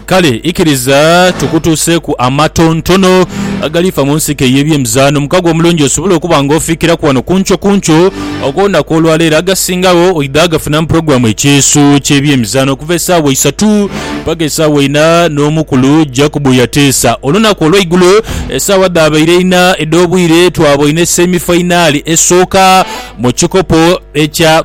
Kale ikiriza tukutuuseeku amatontono agaliifa mu nsiko ey'ebyemizaano. Omukago omulungi osobole okuba nga ofiikiraku wano kunkyo kunkyo ogw'olunaku olwaleero. Agasingawo oidha gafuna mu pulogulaamu Ekyeeso ky'ebyemizaano okuva esaawa isatu paka esaawa ina n'omukulu Jacob Yateesa. Olunaku olweigulo esaawa dhaabaire ina edh'obwire twaboine semifainaali esooka mu kikopo ekya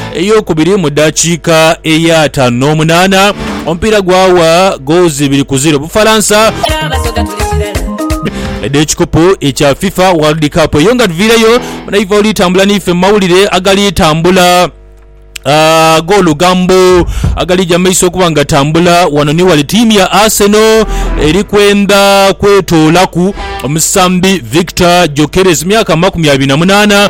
eyokubiri mu dakiika eya ataanu n'omunaana omupiira gwawa goozi ibiri ku ziro Bufalansa edh'ekikopo ekya FIFA World Cup. Eyo nga tuviireyo munaife oli tambula naife mu mawulire agali tambula Uh, g'olugambo agalija maiso okuba nga tambula wano ni wali tiimu ya Arsenal eri kwenda kwetoolaku omusambi Victor Gyokeres myaka makumi abiri na munaana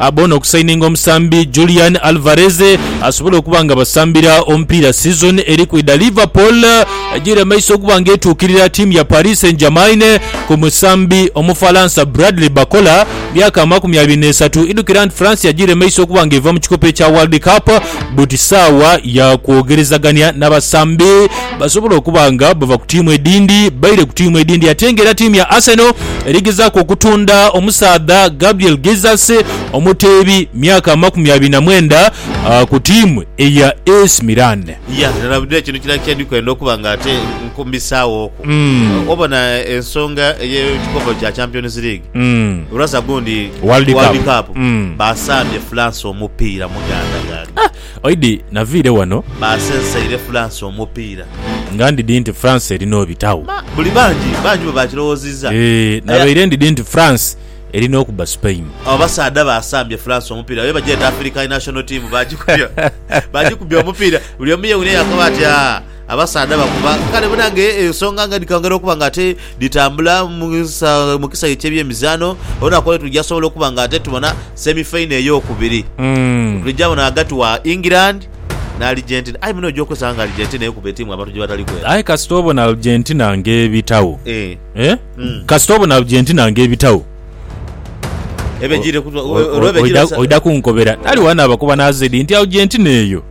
Abona okusayininga omusambi Julian Alvarez asobole okuba nga abasambira omupiira sizoni eri kwidha. Liverpool ejiire maiso okuba nga etuukirira ttiimu ya Paris Saint-Germain ku musambi Omufalansa Bradley Barcola, myaka amakumi abiri n'esatu. Idhukira nti France yajiire maiso okuba nga eva mu kikopo ekya World Cup buti saawa ya kwogerezagania n'abasambi. Basobola okuba nga bava ku tiimu edhindi baire ku tiimu edhindi ate nga era tiimu ya Arsenal eri gezaaku okutunda omusaadha Gabriel Jesus omuteebi myaka amakumi abiri na mwenda ku tiimu eya Ac Milan. Ya, na buli ekyo ni kirala kyedi kwenda okuba nga ate nkumbisaawo ku. Obona ensonga ey'ekikopo kya Champions League, lwaza gundi World Cup. Cup, baasambye France omupiira muganda ganda. Oidhi naviire wano. Baasenseire Fulansi omupiira. Nga ndidhi nti Fulansi eri n'obitagho. Buli bangi bangi bwe baakirowoozizza. Eeh, nabaire ndidhi nti Fulansi eri n'okuba Sipeyini. Abo basaadha baasambye Fulansi omupiira. Babe bagyeta Afirikani National Tiimu. Baagikubya, baagikubya omupiira. Buli omu yeewunya yakoba ati, Aa! Abasaadha bakuba kale banange ensonga nga dhikayongera okuba nga ate dhitambula mu kisaghe kyebyemizaano olunaku olwe tuja sobola okuba nga ate tubona semi final eyokubiri mm. tuja bona agati wa England na Argentina aye muno oja okozesa nga Argentina ekuba etiimu abantu gyebatali kwera aye kasita obona Argentina nga ebitawo eh. Eh? Mm. kasita obona Argentina nga ebitawo oida kunkobera taliwana abakuba nazedi nti Argentina eyo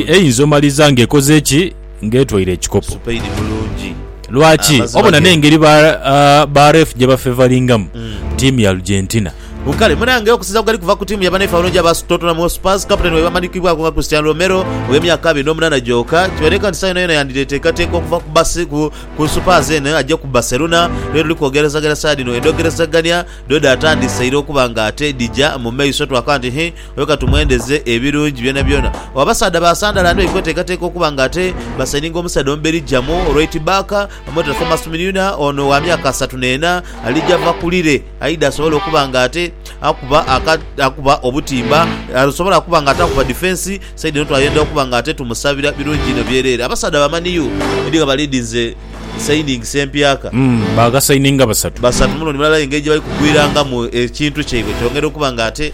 Eyinza omaliza ng'ekoze ki? Ng'etwaire ekikopo. Lwaki? Obona n'engeri ba reef gye bafevalingamu ttiimu ya Argentina. Kale munange okusinza ku gali kuva ku tiimu ya baneefe abalungi aba Tottenham Hotspurs, kapiteeni waibwe amanyikibwaku nga Cristiano Romero ow'emyaka abiri n'omunaana gyoka, kibaleka nti sa yonayona yandidheteekateeka okuva ku basi ku Supers eno aje ku Barcelona lwe luli kwogerezaganya saadi eno. Endhogerezaganya dho dhaatandiseire okuba ng'ate dhija mu maiso twakaba nti, Hi! Oyo ka tumwendeze ebirungi byonabyona. O Abasaadha ba Sandala ndibali kweteekateeka okuba nga ate basaininga omusaadha omu Beligiamu olw'eit Baaka, omweta Thomas Mnyuna ono wa myaka asatu n'ena, alija va ku Lille aidha asobole okuba nga ate akuba aka, akuba obutimba, asobole okuba nga ate akuba difensi. Saidi eno twayendha okuba nga ate tumusabira birungi inho byereere. Abasaadha ba Man U ndi nga balidinze sainingisi empyaka. Umm, baagasaininga basatu. Basatu, muno ni mulala aye engeri gye bali kugwirangamu ekintu kyaibwe kyongera okuba nga ate.